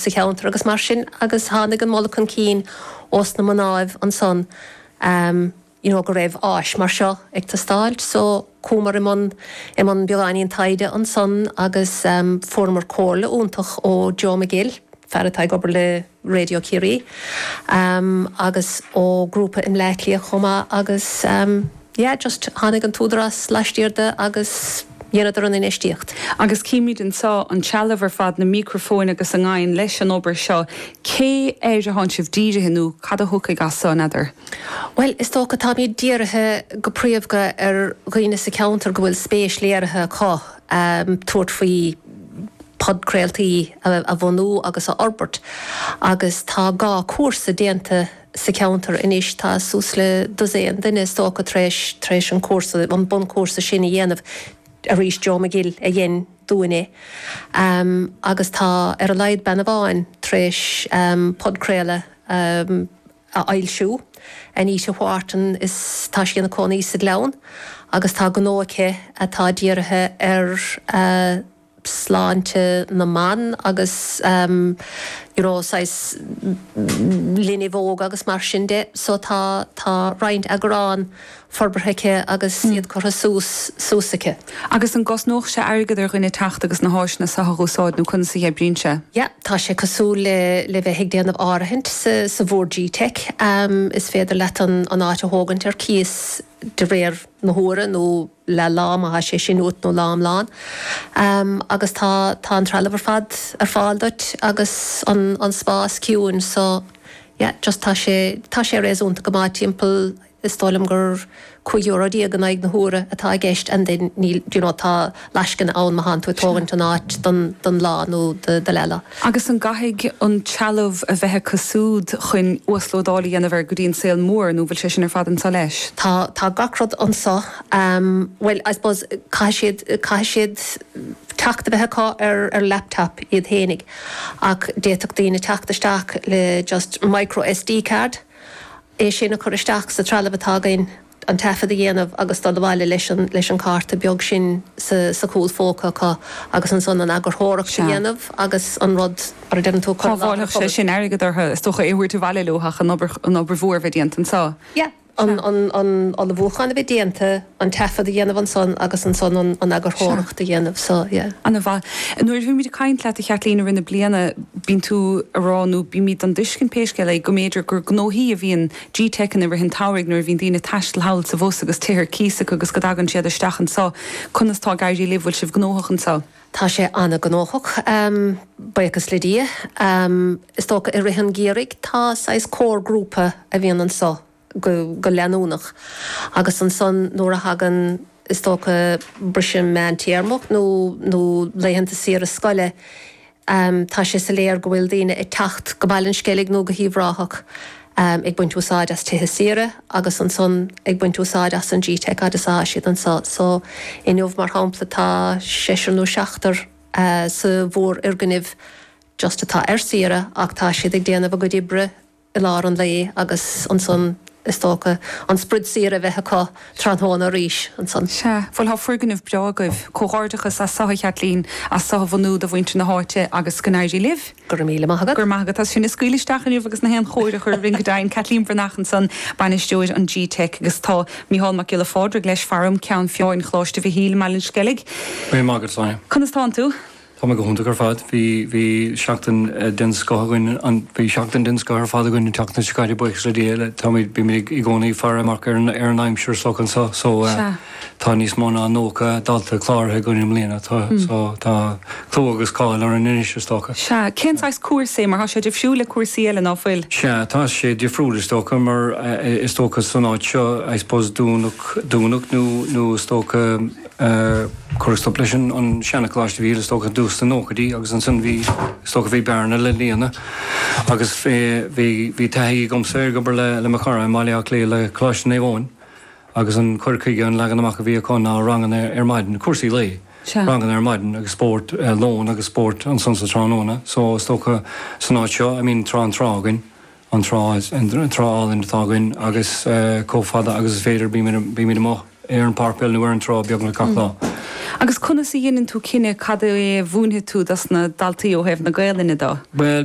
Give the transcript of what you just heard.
sa cheantar agus mar sin agus tháinig an moladh chun cinn ós na mnáibh ansan you know go raibh áis mar seo ag teastáilt so chuamar i mbun i mbun beagáinín taighde ansan agus fuaireamar comhairle iontach ó Joe McGill, fear atá ag obair le Raidió Chiarraí, agus ó grúpa i mBleá Cliath chomh maith agus. yeah just tháinig an tÚdarás laistiar de agus dheineadar an infheistíocht. Agus címid anseo, an trealamh ar fad, na mícrafóin agus a ngabhann leis an obair seo, cé air a tánn sibh dírithe nó cad a thiocfaidh as seo, n'fheadar? Bhuel, is dócha táimid dírithe go príomhdha ar dhaoine sa cheantar go bhfuil spéis léirithe acu tabhairt faoi podcraoltaí a bhunú agus a fhorbairt agus tá dhá cúrsa déanta, sa cheantar anois. Tá suas le dosaen duine is dócha tar éis, tar éis an cúrsa, an bunchúrsa sin a dhéanamh arís. Joe McGill a dhein dúinn é. Agus tá ar a laghad bean amháin tar éis podchraoladh a fhoilsiú, Anita Wharton is tá sí ina cónaí sa Ghleann agus tá gnó aici atá dírithe ar, sláinte na mban agus you know saghas linbh óg agus mar sin de so tá tá roinnt eagrán forbartha aici agus iad curtha suas suas aici. Agus an gcosnódh sé airgead ar dhuine teacht agus na háiseanna seo a úsáid nó conas a oibríonn sé? Yeah tá sé cosúil le le bheith ag déanamh áirithint sa sa bhord gteic, is féidir leat an an áit a thógaint ar cíos, de réir na huaire nó leath lá má thá sé sin uait nó lá iomlán agus tá tá an trealamh ar fad ar fáil duit agus an an spás ciúin so yeah just tá sé tá sé réasúnta go maith timpeall is dóigh liom gur cúig euro déag in aghaidh na huaire atá i gceist and then níl you know tá lascaine ann má thánn tú ag tógaint an áit do don lá nó do leath lá. Agus an gcaithfidh an trealamh a bheith acu súd chun uaslódáil a dhéanamh air go dtí an saol mór nó bhfuil sé sin ar fad anseo leis? Tá, tá gach rud anseo. Bhuel, I suppose caithfidh siad, caithfidh siad teacht a bheith acu ar ar laptop iad fhéinig ach d'fhéadfadh daoine teacht isteach le just micro SD card, é sin a chur isteach sa trealamh atá againn. an taifead a dhéanamh agus dul abhaile leis an cárta beag sin sa chúlphóca acu agus ansan an eagarthóireacht a dhéanamh agus an rud mar a deireann tú a chur i láthair an phobail. Shábhálfadh sé sin airgead orthu is dócha é a thabhairt abhaile leo ach an obair mhór a bheith déanta anseo. Yeah. An ullmhúchán a bheith déanta, an taifead a dhéanamh ansan agus ansan an eagarthóireacht a dhéanamh. So, yeah. Ana mhaith. Nuair a bhímid ag caint leat a Chaitlín i rith na bliana bíonn tú ag rá nó bímíd den dtuiscint pé scéal é go mb'fhéidir gur gnóthaí a bhíonn G-Teic i rith an tsamhraidh nuair a bhíonn daoine ag taisteal thall is abhus agus tithe ar cíos acu agus go dtagann siad isteach anso. Conas tá ag éirí libh? Bhfuil sibh gnóthach anso? Tá sé ana-ghnóthach, buíochas le Dia. Is dócha i rith an gheimhridh tá saghas core grúpa a bhíonn anso go leanúnach agus ansan nuair a thagann is dócha briseadh meántéarma nó laethanta saoire scoile, Um tá sé soiléar go bhfuil daoine ag teacht go Baile an Sceilg nó go hUíbh Ráthach um ag baint úsáid as tithe saoire agus ansan ag baint úsáid as an G-Teic fhad is atá siad anso. So inniu mar shampla tá seisear nó seachtar sa bhfoirgneamh just atá ar saoire ach tá siad ag déanamh a gcuid oibre i lár an lae agus ansan is dócha an sprid saoire a bheith acu tráthnóna arís ansan. Sea, bhuel tá foirgneamh breá agaibh. Comhghairdeachas as seo, a Chaitlín, as seo a bhunú do mhuintir na háite agus go n-éirí libh. Go raibh míle maith agat. Go raibh maith agat as sinn a scaoileadh isteach inniu agus gach aon chóir a chur orainn go deimhin. Caitlín Bhreathnach ansan, bainisteoir an G-Teic agus tá Micheál Mac Giolla Phádraig leis faram, Ceann Feadhna Choláiste Mhichíl i mBaile an Sceilg. Míle maith agat, Sonia. Conas tánn tú? Tá mé go hiontach ar fad. Bhí bhí seachtain den scoth againn an bhí seachtain den scoth ar fad againn an tseachtain seo caite buíochas le Dia táimid bímid i gcónaí ag faire amach ar an ar an aimsir so anseo so tá níos mó ná 90 dalta cláraithe againn i mbliana tá so tá clú agus cáil orainn anois is dócha. Sea, cén saghas cúrsa é mar tá sé difriúil le cúrsaí eile ná fuil? Sea, tá sé difriúil is dócha mar is dócha san áit seo I suppose dúnadh dúnadh nó nó is dócha, Cuireadh stop leis an seancholáiste a bhí thíos, is dócha, i dtús na nóchaidí agus ansin bhí, is dócha, bhí bearna le líonadh agus bhí taithí agamsa ag obair le mo chara i mBaile Átha Cliath le Coláiste Naomh Eoin agus an cur chuige, an leagan amach a bhí acu ná ranganna ar maidin, cúrsaí lae, ranganna ar maidin agus spórt lóin agus spórt ansan sa tráthnóna. So is dócha san áit seo, I mean tá an trá againn. An trá, an trá álainn atá againn agus comh fada agus is féidir bímid amuigh ar an pháirc peile nó ar an trá beagnach gach lá. Mm. Agus conas a dheineann tú cinneadh cad é a mhúinfidh tú dos na daltaí ó thaobh na Gaelainne dó? Bhuel,